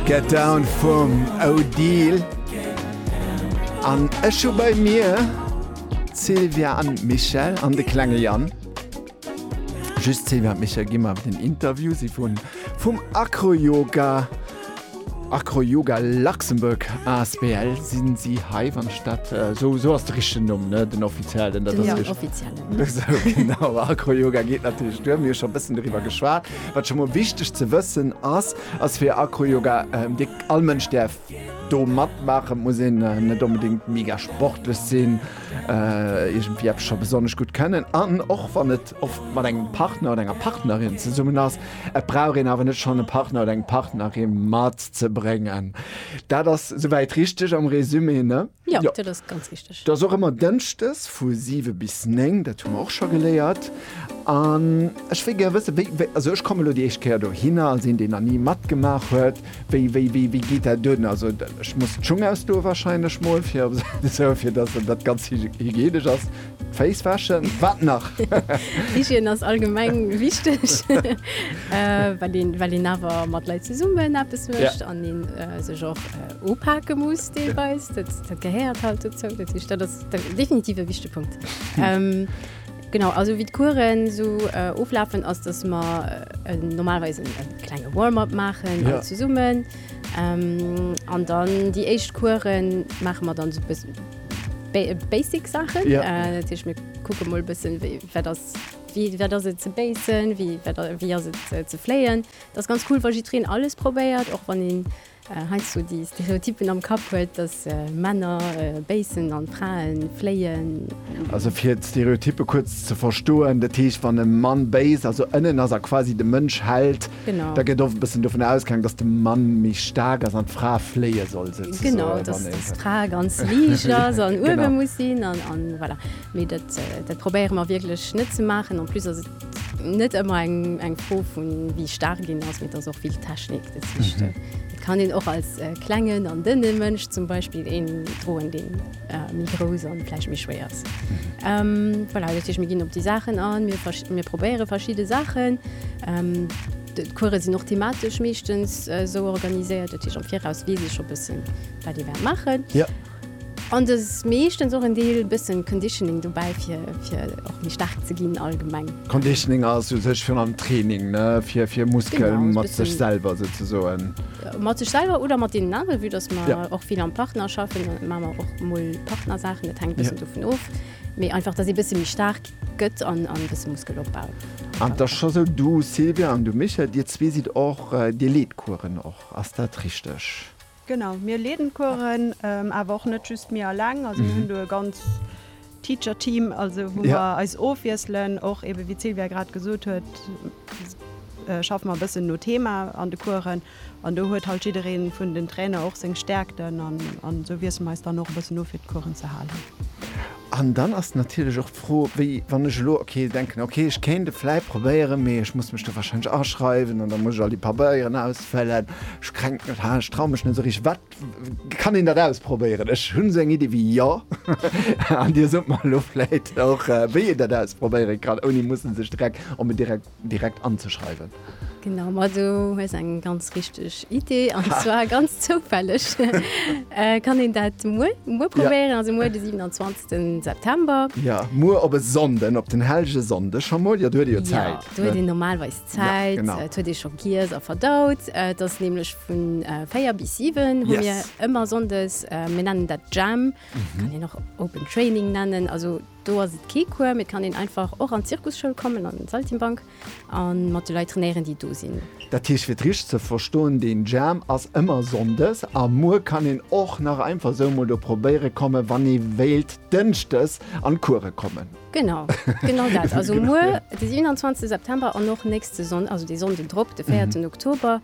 Get down vum Odile An ech hu bei mir Sylvia an Michel an de klenge Jan. Just Sylvia an Michel gimmer den Interview si vun vum Acroyoga Acroyoga Luxembourg asbl sinn si hei wann ech dat esou äh, esou ass de richtegen Numm ne den offiziellen dat ass ja, offiziellen. Genau Acroyoga geet natierlech duer mir scho bëssen driwwer geschwat. Wat scho mol wichteg ze wëssen ass, ass fir Acroyoga, dee all Mënsch däerf do matmaachen, muss een net onbedéngt mega sportlech sinn, iergendwéi eppes scho besonnesch gutt kënnen an och wann et oft mat engem Partner oder enger Partnerin zesummen ass, et brauch een awer net schonn e Partner oder eng Partnerin matzebréngen. Dat ass souwäit richteg am Résumé, ne? Jo, dat ass ganz richteg. Dat ass och ëmmer Dënschdes vu siwe bis néng, dat hu mer och scho geléiert. An ech wéi gär wësse wéi, wéi, also ech kommen elo déi éischt Kéier dohinner als een, deen nach ni matgemaach huet, wéi, wéi, wéi, wéi geet dat un? Also ech muss d'Schung ausdoe warscheinlech mol fir op esou, fir datt dat ganz hygienesch ass. D'Féiss wäschen, wat nach? Hygiène ass allgemeng wichteg, well een, well een awer mat Leit zesummen eppes mécht an een sech och, Upake muss deelweis, dat gehéiert halt dozou, dat ass definitiv e wichtege Punkt. Genau, also wéi d'Coursen esou oflafen, ass, datt mer normalerweis e klenge Warm-up maachen all zesummen. An dann déi éischt Course maache mer dann esou e bëssen basic Saachen. Dat heescht, mir kucke mol e bëssen, wéi wat ass, wéi wat ass et ze base, wéi wat, wéi ass et ze fléien. Dat ass ganz cool, wa jiddwereen alles probéiert, och wann een heiansdo déi Stereotypen am Kapp huet, dass Männer béissen an d'Fraen fléien. Also fir d'Stereotype kuerz ze verstoen, dat heescht wann e Mann béisst, also ënnen ass a quasi de Mënsch Held, da gëtt oft e bëssen dovun ausgaang, dass de Mann méi staark ass an d'Fra fléie soll souzesoen. Genau, dass d'Fra ganz liicht ass an uewe muss sinn an voilà. Mee dat probéiere mer wierklech net ze maachen. En plus ass et. Net ëmmer eng Fro vun wéi staark een ass, mee et ass och vill Technik dezwischt. Et kann een och als klengen an dënne Mënsch zum Beispill een droen, dee méi grouss a vläicht méi schwéier ass. Voilà, dat heescht mir ginn op déi Saachen an, mir probéiere verschidde Saachen. D'Course sinn och thematesch meeschtens esou organiséiert, dat heescht am Viraus weess ee scho bëssen, wat ee wäert maachen. An do ass meeschtens och en Deel bëssen Conditioning dobäi fir fir och méi staark ze ginn allgemeng. Conditioning ass u sech virun allem Training, ne, fir fir Muskel mat sech selwer souzesoen. Mat sech selwer oder mat deenen anere vue dass mer och vill am Partner schaffen, maache mer och mol Partnersaachen, dat hänkt bëssen dovun of, mee einfach dass ee bësse méi staark gëtt an an bësse Muskel opbaut. An et ass scho sou, du Sylvia an du Michèle, dir zwee sidd och, dir leet Coursen och, ass dat richteg? Genau, mir leeden d'Coursen awer och net just mir aleng. Also mir hunn do e ganz Teacher Team, also wou mer eis ofwiesselen. Och ebe wéi d'Sylvia grad gesot huet, schaffe mer e bëssen no Thema an de Coursen. An do huet halt jidderee vun den Trainer och seng Stäerkten an esou wiessele mer eis dann och e bëssen of fir d'Coursen ze halen. An dann ass natierlech och D'Fro wéi wann ech elo ok denken ok ech kéint et vläit probéieren, mee ech muss mech do warscheinlech aschreiwen an da muss ech all déi Pabeieren ausfëllen. Ech krenk mech ha ech traue mech net esou richteg. Wat kann een dat ausprobéieren? Ech hunn esou eng Iddi wéi jo an dir sot mer elo vläit och wéi een dat ausprobéieren kann ouni mussen sech direkt op en direkt. direkt anzeschreiwen. Genau, ma do hues eng ganz richteg Idee, an zwar ganz zoufälleg kann een dat muer, muer probéieren, also muer de 27 September. Jo, muer op e Sonnden, op den Hellgesonndeg scho mol, jo, do huet ee jo Zäit. Jo, do huet een normalweis Zäit, et huet ee scho giess a verdaut. Et ass nämlech vu 4 bis 7 hu mir ëmmer sonndes, mir nennen dat Jam, kann een och Open Training nennen, also. Do ass et kee Cours, mee et kann een einfach och an d'Zirkusschoul kommen, an d'Saltimbank, a mat de Leit trainéieren, déi do sinn. Dat heescht, fir et richteg ze verstoen, deen Jam ass ëmmer Sonndes, a muer kann een och nach einfach esou emol do probéiere kommen, wann ee wéilt Dënschdes an d'Course kommen. Genau, genau dat. Also muer, de 27 September, an och nächste Sonn-, also dee Sonnden drop, de 4 Oktober,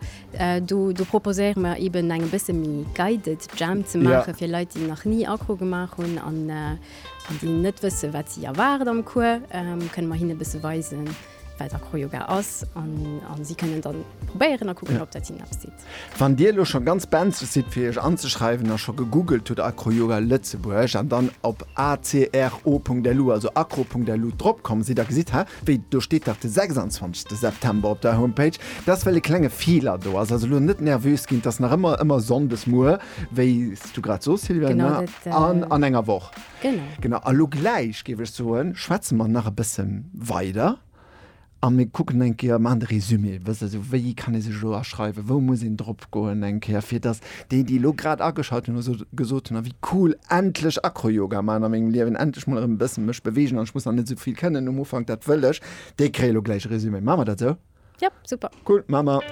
do, do proposéiere mer eben eng e bësse méi guided Jam ze maachen, fir Leit, déi nach ni Accro gemaach hunn, an, Wann si net wëssen, wat si erwaart am Cours, kënne mer hinne e bësse weisen, wat Acroyoga ass an si kënnen dann probéieren a kucken, ob dat hinnen eppes seet. Wann Dir elo scho ganz benzeg sidd, fir Iech anzeschreiwen a scho gegoogelt hutt Acroyoga Lëtzebuerg an dann op acro.lu, also acro.lu, drop komm sidd a gesitt, Hä, wéi, do steet dach de 26. September op der Homepage! Dat ass, well e klenge Feeler do ass. Also elo net nervös ginn, 't ass nach ëmmer ëmmer Sonndes muer, wéi. du grad soos Sylviane, genau, dat, äh, an, an enger Woch genau. Genau. A lo gläich géif ech soen, schwätze mer nach e bësse weider a mir kucken eng Kéier, man de Resumé, wëss e sou, wéi kann ee sech elo aschreiwen, wou muss een drop goen eng Kéier, fir datt déi, déi lo grad ageschalt hunn a sou gesot hunn, a wéi cool, endlech Acroyoga maachen a mengem Liewen, endlech mol erëm e bësse mech bewegen an ech muss nach net sou vill kënnen um Ufank, dat wëll ech, déi kréie lo gläich e Resumé. Maache mer dat sou? Yep, super. Cool, maache mer.